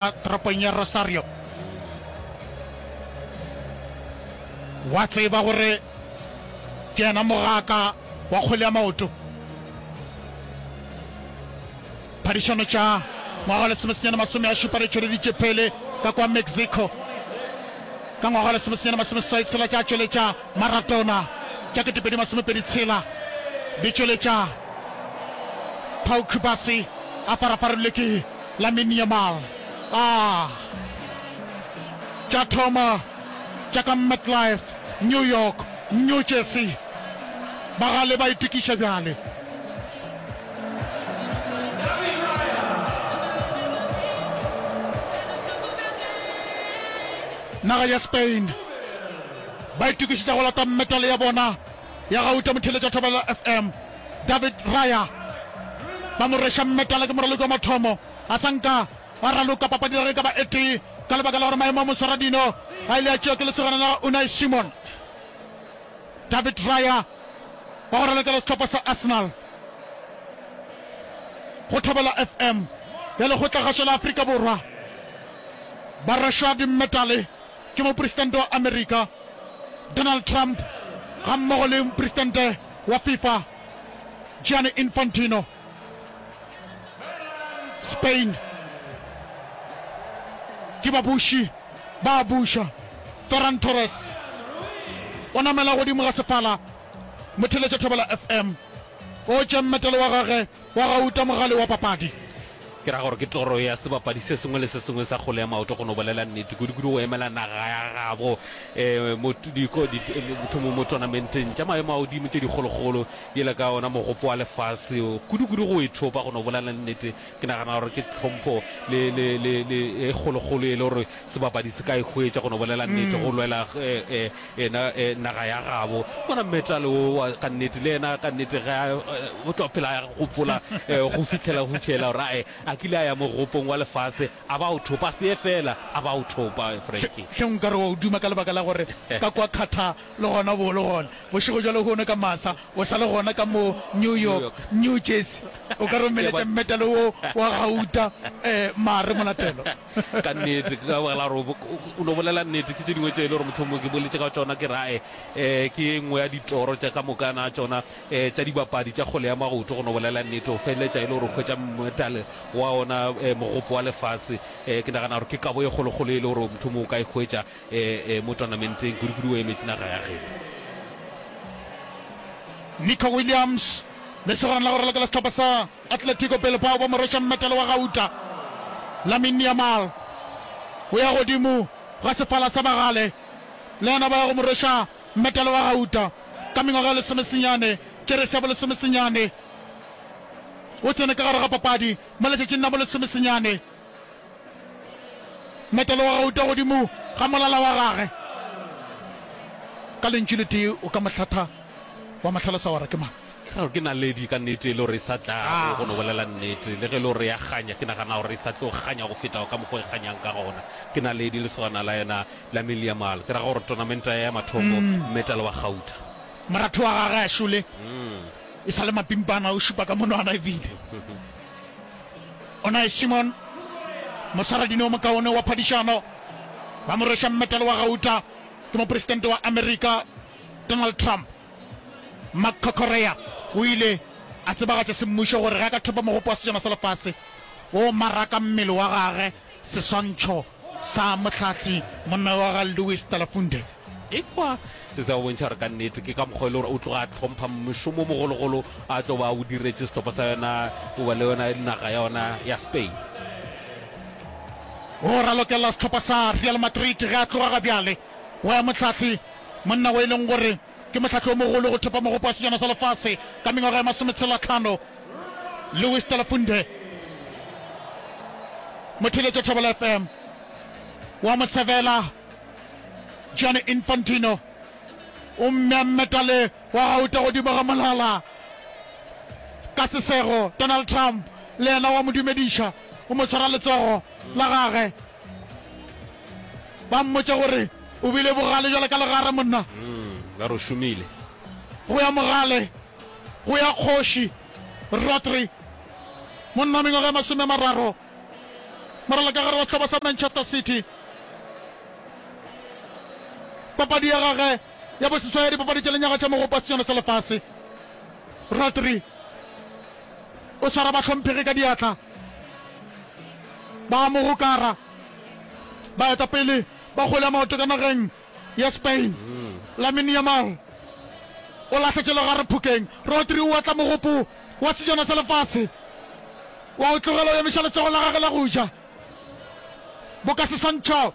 toropong ya Rosario. Wa tseba gore ke yena mogaka wa kgwele ya maoto. Phadišano tša ngwaga wa lesomesenyane masome a šupa di tšweleditše pele ka kwa Mexico. Ka ngwaga wa lesomesenyane masome seswai tshela tša tšweletša Maradona tša ketepedi masomepedi tshela di tšweletša Pau Kubasi a paraparilwe ke Lamine Yamal a tša thoma tša ka MetLife, New York, New Jersey. Ba gale ba itokiša bjale. Naga ya Spain ba itokišetša go lata metale ya bona. ya Gauta Motheletša Thobela FM David Raya ba mo rweša mmetala ke moraloki wa mathomo a sa nka a raloka papadi ya reka ba etee ka lebaka la gore maemo a moswara dino a ile a tšewa ke lesogana la Unai Simon David Raya wa go ralokela setlhopha sa Arsenal go Thobela FM ya lekgotlakgašo la Afrika Borwa ba rwešwa dimmetale ke Mopresidente wa Amerika Donald Trump gammogo le Mopresidente wa Fifa Gianni Infantino, Spain, ke babuši ba a buša. Ferran Torres o namela godimo ga sefala, Motheletša Thobela FM o tše mmetelo wa gage. Wa gauta mogale wa papadi. Ke ra gore ke toro ya sebapadi se sengwe le se sengwe sa kgole ya maoto go no bolela nnete, kudu-kudu go emela naga ya gabo eh, mo diko, di, mohlomong mo tournamenteng tša maemo a godimo tše dikgolokgolo, yela ka ona mogopo wa lefase. Kudu-kudu go e thopa, go no bolela nnete, ke nagana gore ke tlhompho le, le, le, le e kgolokgolo e le gore sebapadi se ka e hwetša, go no bolela nnete, go lwela eh, eh, Yena e, naga ya gabo. Bona metal wo wa ka nnete, le yena ka nnete ge a, o tlo phela a gopola eh, go fihlela go fiela gore ae a kile a ya mogopong wa lefase a ba o thopa se ye fela a ba o thopa Frankie. Hle nka re wa o duma ka lebaka la gore ka kwa Qatar le gona bo le gona bošego jwale hono ka masa o sa le gona ka mo New York, New Jersey o ka re o meletša metal wo wa gauta eh, mare molatelo. ka nnete ka baka la gore o no bolela nnete ke tse dingwe tse e le gore motlhomongwe ke boletse ka tsona ke rae um eh, ke e nngwe ya ditoro tsa ka mokana tsona um tsa dibapadi tsa kgole ya magoto go no bolela nnete o feleletsa e le gore o kgwetsa metale wa ona um eh, mogopo wa lefase um ke nagana gore ke kabo e kgolokgolo e le gore motlhomongwe o ka e kgwetsa um mo tournamenteng kudu-kudu o emetse naga ya geno nico williams le segorana la gore le ka la setlhopha sa Atletico Bilbao ba mo rweša mmetele wa gauta. Lamine Yamal o ya godimo ga sefala sa bagale, le yena ba ya go mo rweša mmetele wa gauta. Ka mengwaga e lesomesenyane, kerese ya bolesomesenyane, o tsene ka gare ga papadi mo letšatšing la bolesomesenyane. Mmetele wa gauta godimo ga molala wa gage. Ka lentšu letee o ka mo hlatha wa mo hlalosa gore ke mang. Ke ra gore ke naledi ka nnete e le gore e sa tlago go no bolela nnete. Le ge e le gore ya kganya, ke nagana gore e sa tlo kganya go feta ka mokgwa e kganyang ka gona. Ke naledi lesogana la yena la Miliamal, ke ra gore tonamenta ya ya mathomo, metal wa gauta. Moratho wa gage a šole e sa le mapimpana, o šupa ka monwana e bile Unai Simon, mosaradini o mokaone wa phadišano, ba mo rweša metal wa gauta. Ke mopresidente wa Amerika. Donald Trump, Mark Kokorea o ile a tsebagatša semmušo gore ge a ka thopa mogopo wa Sejana sa Lefase o maraka mmele wa gage seswantšho sa mohlahli monna wa ga Louis Talafunde. Ekwa se se a go bontšha gore ka nnete ke ka mokgwa e le gore o tloga a hlompha mošomo o mogologolo a tlo ba o diretše setopo sa yona goba le yona naga ya yona ya Spain. O ralokelela sehlopha sa Real Madrid ge a tloga ga bjale. Go ya Mohlahli, monna wo e leng gore ke mohlahli o mogolo go thopa mogopo wa Sejana sa Lefase ka mengwaga ya masometshelatlhano, Louis Stelafunde Motheletša Thobela FM, wa mo sebela Gianni Infantino o mmea metale wa gauta godimo ga molala ka sesego, Donald Trump le yena o a mo dumediša, o mo tshwara letsogo la gage. ba mmotša gore o bile bogale jwale ka legare monna ba re o šomile go ya mogale go ya kgoši rotri monna mengwaga e masome mararo moralo ka gare wa sehlopha sa manchester city papadi ya gage ya boseswa ya dipapadi tša lenyaga tša mogopa senyano sa lefase rotri o swara bahlomphegi ka diatla Ba a mo gokara baetapele ba kgwele ya maoto ka nageng ya Spain. Lamine Yamal o lahla tšelogare phokeng. Rodri o otla mogopo wa sejana sa lefase wa go tlogela o emiša letsogo la gagwe la go ja. Boka Sesantšhao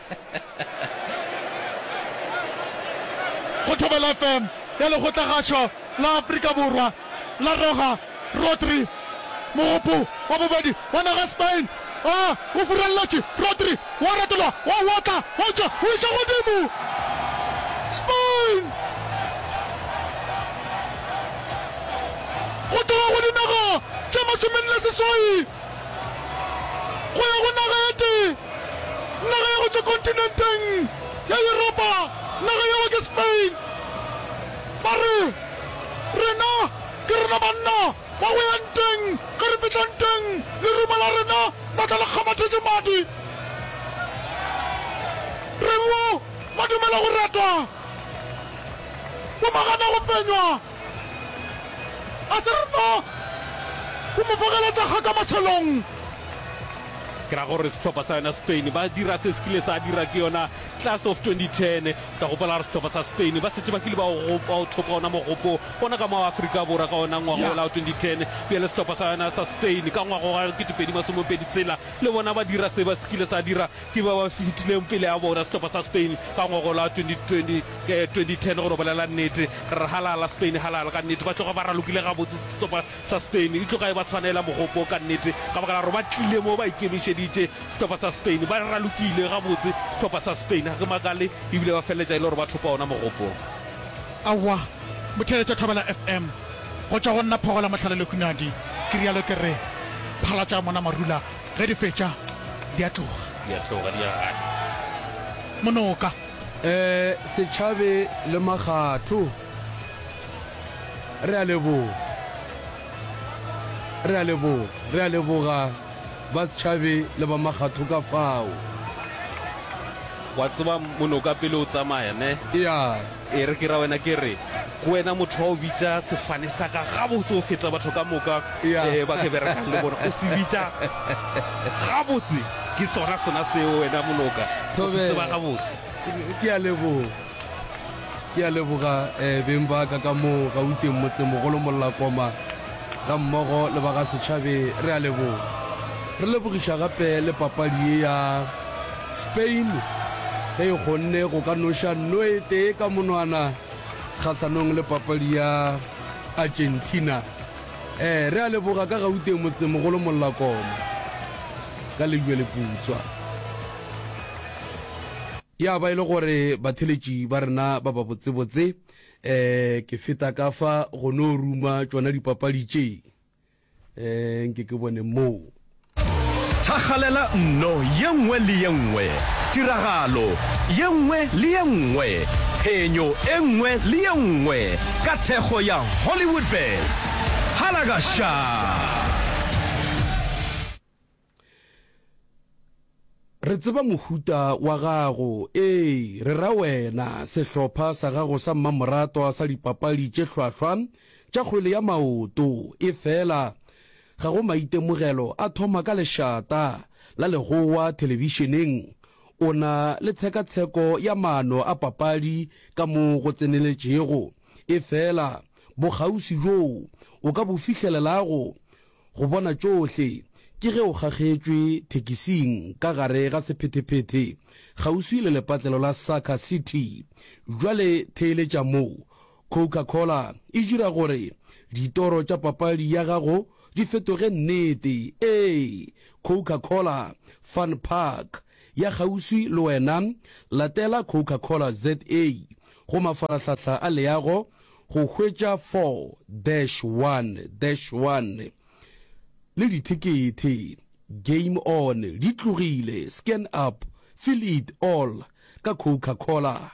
Go Thobela FM ya Lekgotlagašo la Afrika Borwa la roga Rodri, mogopo wa bobedi wa naga Spain a o furalletše. Rodri wa retolwa, wa otla, o tšwa, o iša godimo. Spain go tloga go dinaga tše masomenne seswai. go ya go naga ya tee, naga ya go tšwa kontinenteng ya Yuropa, naga yeo ke Spain. Ba re, Rena ke rena banna ba go ya nteng, ge re fihla nteng lerumo la rena la tla le kgamathetše madi. Re b'o ba dumela go ratwa, b'o ba gana go fenywa. A se re tlo go mo bogeletša kga ka mašelong. Ke ra gore sehlopha sa yona Spain ba dira se se kile sa dira ke yona Class of 2010. Ka gopola gore sehlopha sa Spain ba šetše ba kile ba o ba o thopa ona mogopo ona ka mo Afrika Borwa ka ona ngwaga Yeah. ola wa 2010. Bjale sehlopha sa yona sa Spain ka ngwaga wa 2020 tshela le bona ba dira se ba se kile sa dira Ke ba ba fetilego pele ga bona sehlopha sa Spain ka ngwagola wa 2010. Go no bolela nnete, re re halala, Spain halala ka nnete. Ba tloga ba ralokile gabotse sehlopha sa Spain. E tloga e ba swanela mogopo ka nnete ka baka la gore ba tlile mo ba ikemišeditše. Sehlopha sa Spain ba ralokile gabotse, sehlopha sa Spain. Ga ke makale e bile ba feleletša e le gore ba thopa ona mogopo. Aowa, Motheeletša o Thobela FM. Go tšwa go nna Phogola Mohlale Lehunadi, ke realo ke re, phalatša mona marula Ge di fetša, di a tloga. Di a tloga, di ya gae. Monoka. E, setšhabe le makgatho. Re a leboga. Re a leboga. Re a leboga ba setšhabe le ba makgatho ka fao. Wa tseba, monoka pele o tsamaya, ne? Eya. E re ke ra wena ke re, Ke wena motho wa go bitša sefane sa ka gabotse go feta batho ka moka ba ke berekang le bona. O se bitša gabotse. Ke sona sona seo, wena Moloka. O ke tseba gabotse. Ke a leboga. Ke a leboga, beng ba ka ka moo gauteng, motsemogolo Mollakoma. Gammogo le ba ga Setšhabe re a leboga. Re lebogiša gape le papadi ye ya Spain ge e kgonne go ka noša noe tee ka monwana kgahlanong le papadi ya Argentina. Ee, re a leboga ka Gauteng motsemogolo Mollakoma ka Lejweleputswa. Ya ba e le gore batheletši ba rena ba babotsebotse. eh ke feta ka fa go no ruma tšona dipapadi tše eh nke ke bone moo thagalela nno ye nngwe le ye nngwe tiragalo ye nngwe le ye nngwe phenyo e nngwe le ye nngwe ka thekgo ya hollywood bets halagaša Re tseba mohuta wa gago, ee, re ra wena, sehlopha sa gago sa mmamoratwa sa dipapadi tše hlwahlwa tša kgwele ya maoto. Efela ga go maitemogelo a thoma ka lešata la legowa thelebišeneng. O na le tshekatsheko ya maano a papadi ka mo go tseneletšego, efela bokgauswi bjoo o ka bo fihlelelago go bona tšohle ke ge o kgakgetšwe thekising ka gare ga sephethe-phethe kgauswi le lepatlelo la Saka City. Bjale theeletša moo Coca-Cola e dira gore ditoro tša papadi ya gago di fetoge nnete. Ee, Coca-Cola Fun Park ya kgauswi le wena. Latela Coca-Cola ZA go mafarahlahla a leago Go hwetša 4-1-1 le dithekethe, Game On, di tlogile, Scan Up, Feel It All ka Coca-Cola.